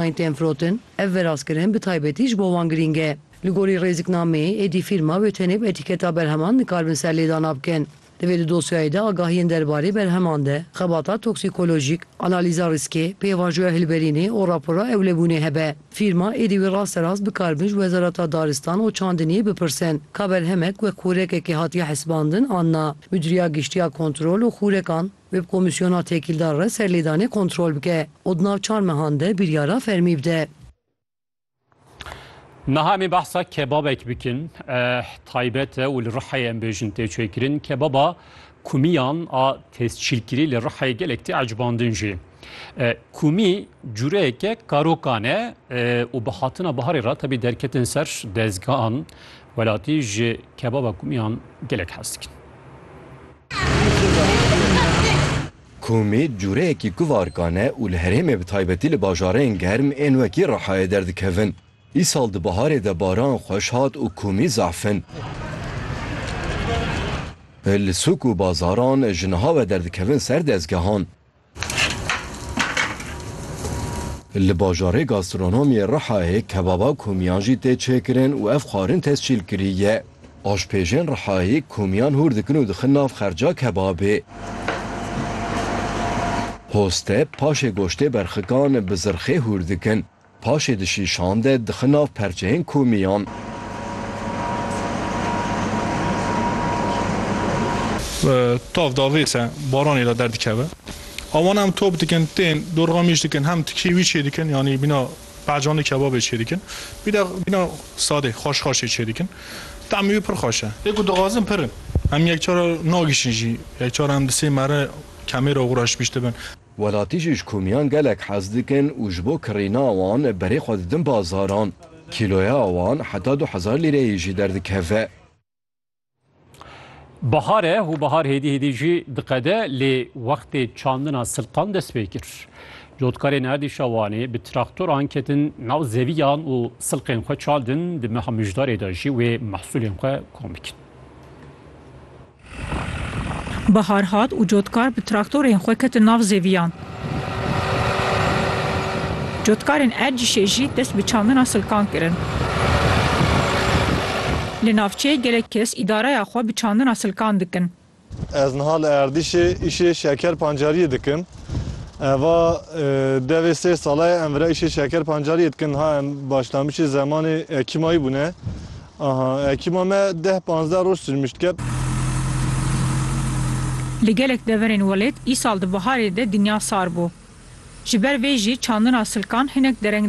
Ayten Frothen, Ev veraskirin bi taybetî ji bo wan girîng e. Li gorî rêziknameyê, êdî fîrma wê tenê bi etîketa berheman nikarbin serlêdana bikin. Divê di dosyayê de agahiyên derbarê berheman de, xebata toksîkolojîk, analîza rîskê, pêvajoya hilberînê û rapora ewlebûnê hebe. Fîrma êdî wê rasterast bikaribin ji Wezareta Daristan û Çandiniyê bipirsin ka berhemek wek xûrekekê hatiye hesibandin an na. Midûriya Giştî ya Kontrol û Xûrekan, Bi komîsyona tekîldar re serlêdanê kontrol bike û di nav çar mehan de biryara fermî bide. Niha em ê behsa kebabek bikin. Taybet e û li Rihayê em bêjin tê çêkirin. Kebaba kumiyan a tescîlkirî li Rihayê gelek tê ecbandin jî. Kumî cureyeke karokan e û bi hatina biharê re tebî derketin ser dezgehan welatî ji kebaba kumîyan gelek hez dikin. Kumî cureyekî kuvarkan e û li herêmê bi taybetî li bajarên germ ên wekî Rihayê derdikevin. Îsal di biharê de baran xweş hat û kumî zaf in. Li sûk û bazaran ji niha ve derdikevin ser dezgehan. Li bajarê gastronomiyê Rihayê kebaba komiyan jî tê çêkirin û ev xwarin tescîl kirî ye. Aşpêjên Rihayê komiyan hûr dikin û dixin nav xerca kebabê. Hoste paşê goştê berxikan bi zirxê hûr dikin. Paşê dişî şande dixin nav perçeyên komîyan. Tav da vêse baranê da derdikeve. Awan hem top dikin, tên, dorxa mîş dikin, hem tikî wî çêdikin, yanî bîna pehcanî kebabê çêdikin. Wî de bîna sadê, xweş xweşê çêdikin. Temî wî pir xweş e. Lê ku dixwazin pir in. Hem yekcar nagişin jî. Yekcar hem di sê mere kemêra xwe re şibîştibin. Welatî jî ji komiyan gelek hez dikin û ji bo kirîna wan berê xwe didin bazaran. Kîloya wan heta du hezar lîreyê jî derdikeve. Bihar e û bihar hêdî hêdî jî diqede lê wextê çandina silqan dest pê kir. Cotkarên erdîşa Wanê bi traktoran ketin nav zeviyan û silqên xwe çaldin, di meha mijdarê de jî wê mehsulên xwe kom bikin. Bihar hat û cotkar bi traktorên xwe ketin nav zêviyan. Cotkarên Ercîşê jî dest bi çandina silkan kirin. Li navçeyê gelek kes îdareya xwe bi çandina silkan dikin. Ez niha li Erdîşê îşê şeker pancariyê dikim. Eva devê sê sala ye em vira îşê şeker pancariyê dikin. Niha em başlanbîşê zemanê ekîmayî bûne. Aha ekîma me deh panzdeh roj sirmişt kep. Li gelek deverên welêt îsal di biharê de dinya sar bû. Ji ber vê jî çandina silkan hinek dereng